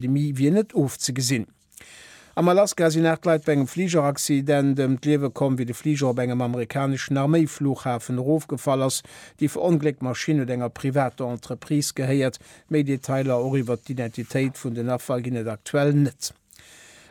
D'Pandemie wier net ofzegesinn. Am Alaska sinn 8 Leit bei engem Fligeraccident ëm d'Liewe komm, wéi de Fliger op engem amerikaneschen Arméi-Fluchhafen erofgefall ass. Déi verongléckt Maschinn huet enger privater Entreprise gehéiert. Méi Detailer, och iwwert d'Identitéit vun den Affer, ginn et aktuell net.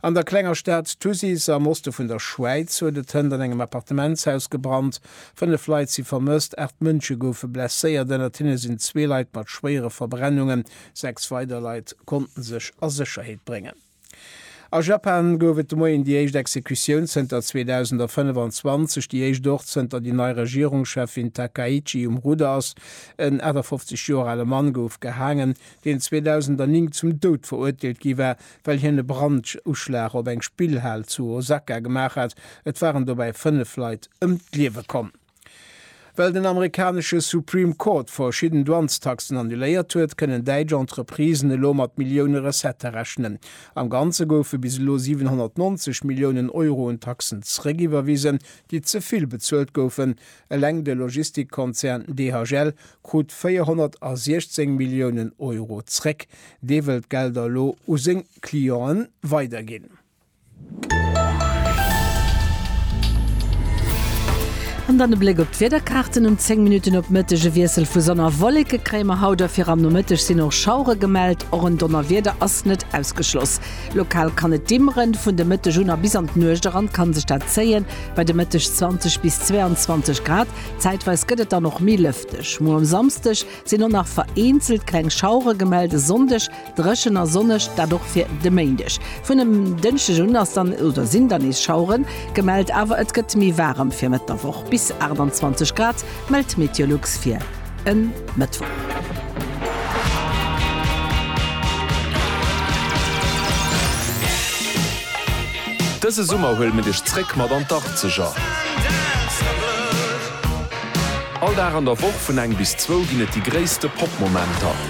An der klenger Stad Thusis am Oste vun der Schwäiz huet et hënt an engem Appartementshaus gebrannt. 5 Leit si vermësst, 8 Mënsche goufe blesséiert, ënnert hinne sinn zwee Leit mat schwéiere Verbrennungen. Sechs weider Leit konnten sech a Sécherheet bréngen. A Japan gouf et de Moien déi éischt Exekutioun zënter 2025, déi éischt och zënter déi nei Regierungscheffin Takaichi um Rudder ass. En 58 Joer ale Mann gouf gehaangen, deen 2009 zum Doud verurteelt gi war, well hien e Branduschlag op eng Spillhal zu Osaka gemaach hat. Et waren dobäi fënnef Leit ëm d'Liewe komm. Well den amerikanesche Supreme Court verschidden Douanestaxen annuléiert huet, kënnen däitsch Entreprisen elo mat Millioune Recettë rechnen. Am Ganze goufe bis elo 790 Milliounen Euro un Taxen zeréckiwwerwisen, déi ze vill bezuelt goufen. Eleng de Logistikkonzern DHL krut 416 Milliounen Euro zeréck. Dee wëll d'Gelder elo u seng Clienten weiderginn. An dann e Bléck op d'Wiederkaarten, Um 10 Minutten op Mëtteg e Wiessel vu Sonn a Wolleke kréie mer haut a fir am Nomëtteg sinn och Schauere gemellt. Och en Donnerwieder ass net ausgeschloss. Lokal kann et dimmeren, vun de Mëtteg un a bis an d'Nuecht eran kann sech dat zéien, bei de Mëtteg 20 bis 22 Grad. Zäitweis gëtt et dann och méi lëfteg. Muer um Samsdeg sinn och nach vereenzelt kleng Schauere gemellt, e Sonndeg Dréchen a sonneg, dat och fir de Méindeg. Vun dem Dënschdeg un ass dann oder sinn dann nees Schaueren gemellt, awer et gëtt méi waarem. Fir Mëtt der Woch bis 28 Grad mellt d'Meteolux fir e Mëttwoch. Dëse Summer huele mir dech zréck mat an d'Arkzeger. All Dag an der Woch vun eng bis zwou ginn et déi gréisste Pop-Momenter.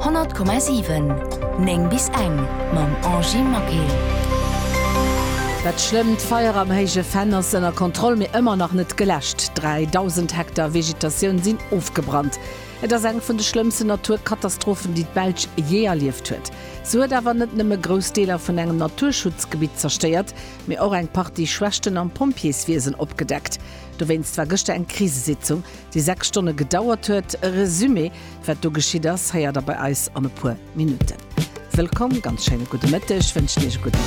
100,7 9 bis eng mam Angy Maquil. Dat schlëmmt Feier am Héije Venn ass ënner Kontroll, mee ëmmer nach net geläscht. 3.000 Hektar Vegetatioun sinn ofgebrannt. Et ass eng vun de schlëmmsten Naturkatastrophen, déi d'Belsch jee erlieft huet. Se huet awer net nëmme grouss Deeler vun engem Naturschutzgebitt zerstéiert, mee och eng Partie Schwächten am Pompjeeswiesen opgedeckt. Dowéinst war gëschter eng Krisesitzung déi 6 Stonne gedauert huet. E Resumé wat do geschitt ass, héiert der bei eis an e puer Minutten. Wëllkomm, ganz schéine gudde Mëtteg wënschen Iech e gudden.